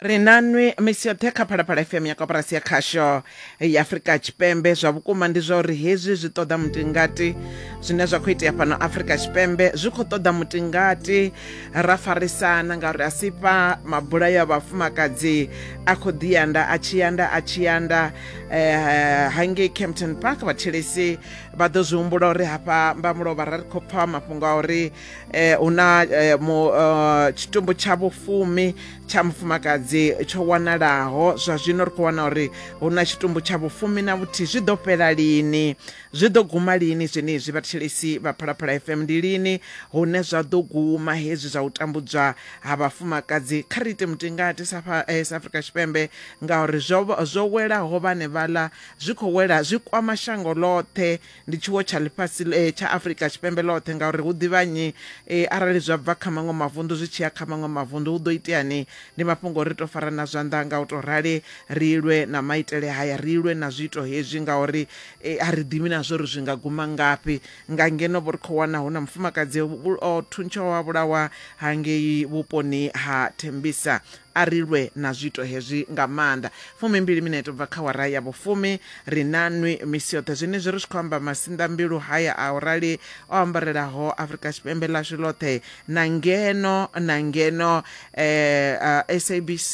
ri nanwi misi yoṱhe kha phalaphala fm ya koporasi ya khasho ya afurika tshipembe zwa vhukuma ndi zwa uri hezwi zwi ṱoḓa mutingati zwine zwa khou itea fhano afurika tshipembe zwi khou ṱoḓa mutingati ra farisana ngauri a si fha mabulayo a vhafumakadzi a khou ḓiyanda a tshiyanda a tshiyanda eh, hangei campton park vhathelesi vha ḓo zwi humbula uri hafha mbamulovha ra ri khou pfa mafhungo a uri eh, hu na eh, mu, uh, tshitumbu tsha vhufumi tsha mufumakadzi tsho wanalaho zwa zwino ri khou wana uri hu na tshitumbu tsha vhufumi na vhuthihi zwi ḓo fhela lini zwi ḓo guma lini zwenezwi vhathetshelesi vha phalaphala fm ndi lini hune zwa ḓo guma hezwi zwa u tambudzwa ha vhafumakadzi kha ri ite mutingati sa fa- eh, sa afrika tshipembe ngauri zwo zwo welaho vhane vhaḽa zwi khou wela zwi kwama shango ḽoṱhe ndi tshiwo tsha ḽifhasi eh, tsha afurika tshipembe ḽoṱhe ngauri hu ḓivha nnyi eh, arali zwa bva kha maṅwe mavunḓu zwi tshi ya kha maṅwe mavunḓu hu ḓo iteani ndi mafhungo ri tou farana zwanḓa nga u tou rali ri lwe na maitele haya ri lwe na zwiito hezwi ngauri eh, a ri ḓivhi na zwo ri zwi nga guma ngafhi nga ngeno vho ri khou wana hu na mufumakadzi o thuntshaho wa vhulawa hangei vhuponi ha thembisa A ri lwe na zwiito hezwi nga maanḓa. Fumimbili minete u bva kha awara ya vhufumi, ri na nwi misi yoṱhe. Zwenezwi ri tshi khou amba, masinḓambilu haya a u rali o ambarelaho Afrika Tshipembe ḽashu ḽoṱhe na ngeno na ngeno SABC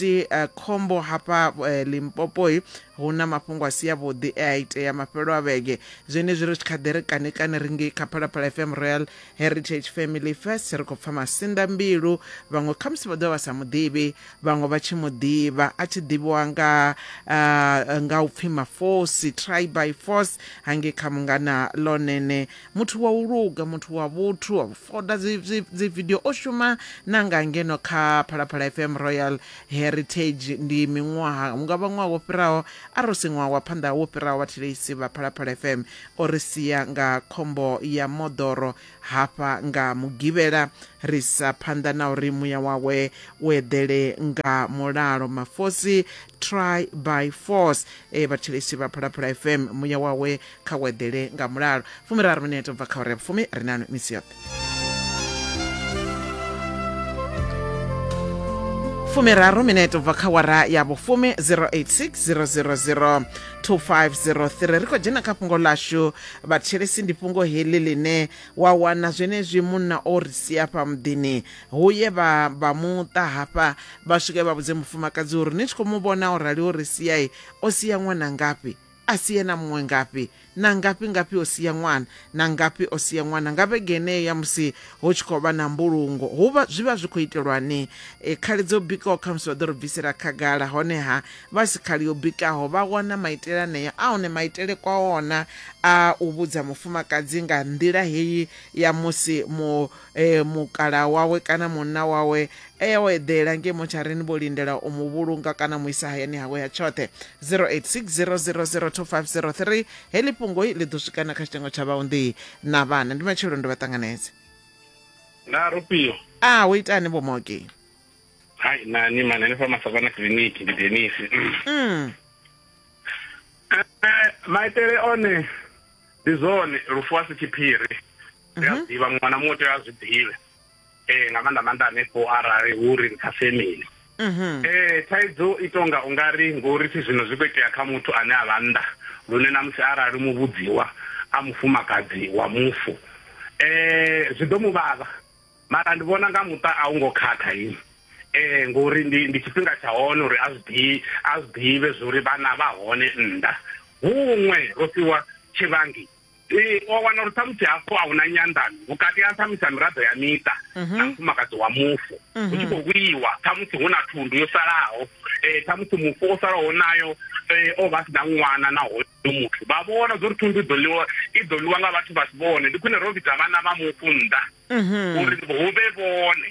khombo hafha Limpopoi hu na mafhungo a si avhuḓi e a itea mafhelo a vhege. Zwenezwi ri tshi kha ḓi ri kani kani ri ngei kha Phalaphala FM Royal heritage family first ri khou pfa masinda mbilu vhaṅwe khamusi vha ḓovha vha sa muḓivhi vhaṅwe vha tshi muḓivha a tshi ḓivhiwa nga uh, nga upfi mafosi try by force hange kha mungana lonene muthu wa u luga muthu wa vhuthu wa foda dzi video o shuma na nga ngeno kha phalaphala fm royal heritage ndi miṅwaha unga vha ṅwaha wo fhiraho a ro si ṅwaha wa phanḓa wo fhiraho vhatheleisi vha phalaphala fm O ri sia nga khombo ya moḓoro hafha nga Mugivhela. Ri isa phanḓa na uri muya wawe u eḓele nga mulalo. Mafosi, Try by Force. Ee vhathetshelesi vha Phalaphala FM, muya wawe kha u eḓele nga mulalo. Fumiraru minete u bva kha awara ya vhufumi, ri nanu misi yoṱhe. fumiraru minete ubva kha wara ya vhufumi 086000 2503 ri khou dzhena kha fhungo lashu vhatshelesi ndi fhungo heḽi ḽine wa wana zwenezwi munna o ri sia fha muḓini huye vha vha muṱa hafha vha swike vha vhudze mufumakadzi uri ni tshi khou mu vhona o rali o ri siai o sia ṅwana ngafhi a si ena muṅwe ngafhi na ngafhi ngafhi o sia ṅwana na ngafhi o sia ṅwana nga vhege yeneyo ya musi hu tshi khou vha na mbulungo hu vha zwi vha zwi khou itelwani e, khali dzo bikaho khamusi vha ḓo ri bvisela khagala honeha vha si khali yo bikaho vha wana maitele aneyo a hone maitele kwa ona a u vhudza mufumakadzi nga nḓila heyi ya musi mu e, mukala wawe kana munna wawe e ya o eḓela ngei motsharini vho lindela u mu vhulunga kana mu isa hayani hawe ha tshoṱhe 0860002503 heḽi fhungoi ḽi ḓo swikana kha tshitengo tsha vhaunḓi na vhana ndi matshelo ndo vha ṱanganedze na rufio a hu itani vho moki hai nani mani hanefha masavana kiliniki ndi denisi mm. eh, maitele one ndi zwone lufu a si tshiphiri ri a mhm. ḓivha muṅwe na muṅwe tea a zwi ḓivhe um nga maanḓa maanḓa hanefho arali hu ri nṱha femini um mhm. eh, thaidzo i tonga u nga ri ngori thi zwino zwi khou itea kha muthu ane a vha nnḓa lune na musi arali muvhudziwa a mufumakadzi wa mufu um zwi ḓo mu vhavha mara ndi vhona nga muṱa a u ngo khakha ini eh ngori ndi ndi tshifhinga tsha hone uri a zwi a zwi ḓivhe zuri vhana vha hone nnḓa huṅwe ro fhiwa tshivhangi ee wa wana uri ṱhamusi hafho a huna nyanḓano vhukati ha ṱhamusi ha miraḓo ya miṱa mhm. na mufumakadzi wa mufu hu mhm. tshi khou vhuiwa ṱhamusi hu na thundu yo salaho um eh, ṱhamusi mufu o salaho nayo eh, o vha si na ṅwana na hoyo muthu vha vhona zwo ri thundu iḓo ḽiwa i ḓo ḽiwa nga vhathu vha si vhone ndi khwine ro vhidza vhana vha mufu nnḓa mhm. uri hu vhe vhone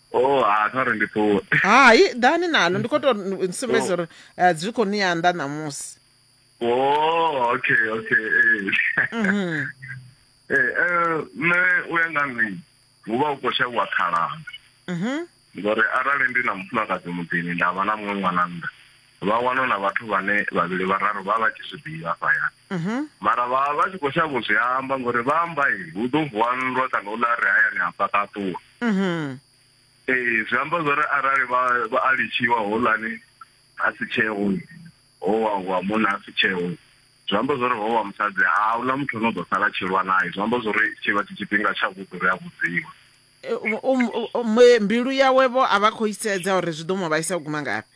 Oh, ha kha uri ndi ṱuwe. Hai, ḓani nalo ndi khou tou n- sumbedza uri eh, zwi khou ni anḓa ṋamusi. Oh, okay, okay. Eh. Eh, eh, nṋe u ya nga nṋe hu vha hu khou shavhiwa khalaha Mhm. ngori arali ndi na mufumakadzi muḓini nda vha na muṅwe ṅwana nnḓa vha wana na vhathu vhane vhavhili vhararu vha vha tshi zwi ḓivha hafhayani Mhm. mara vha vha tshi khou shavha u zwi amba ngori vha amba i hu ḓo vuwa nndwa kana u ḽa re hayani ha fhaṱaṱuwa Mhm. ee zwi amba zwori arali vha vha a litshiwa houḽani a si tsheo ho wa wa munna a si tsheo zwi amba zwori ho wa musadzi a huna muthu ane u ḓo sala a tshi lwa naye zwi amba zwori tshi vha tshi tshifhinga tsha vhuḓi uri a vhudziwe E, u- u- u- mwe- mbilu yawe vho a vha khou i sedza uri zwi ḓo mu vhaisa u guma ngafhi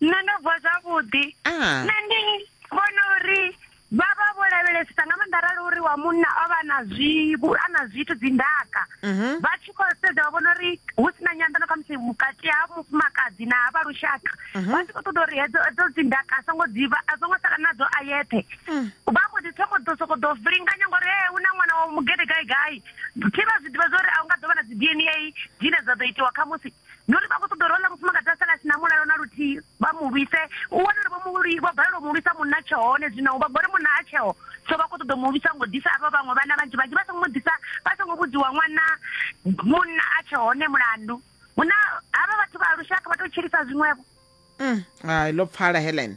nṋe ndo vuwa zwavhuḓi ah. nṋe ndi vhona uri vha vha vho lavhelesisa nga maanḓa arali uri wa munna o vha na zwivhu a na zwithu dzindaka mhm. vha tshi khou sedza vha vhona uri hu si na nyanḓano kha musi vhukati ha mufumakadzi na vha lushaka mhm. vha tshi khou ṱoḓa uri hedzo hedzo dzindaka a songo dzivha a songo sala nadzo a yeṱhe mm. vha mbo ḓi thoma ḓo sokou ḓo vilinganya ngori he hu na ṅwana wa mugede gai gai thi vha zwi ḓivha zwa uri a u nga ḓo vha na dzi d n a dzine dza ḓo itiwa kha musi ndi uri vha khou ṱoḓa uri hone mufumakadzi a sala a si na mulalo na luthihi vha mu lwise u wane uri vho vho balelwa u mu lwisa munna tshe hone zwino vha gore munna a tsheo so vha khou ṱoḓa mu lwisa ngo ḓisa avha vhaṅwe vhana vhanzhi vhanzhi vha songo mu ḓisa vha songo vhudziwa ṅwana munna a tshe hone mulandu huna havha vhathu vha lushaka vha tou tshilisa zwiṅwevho mm. hai ḽo pfala helen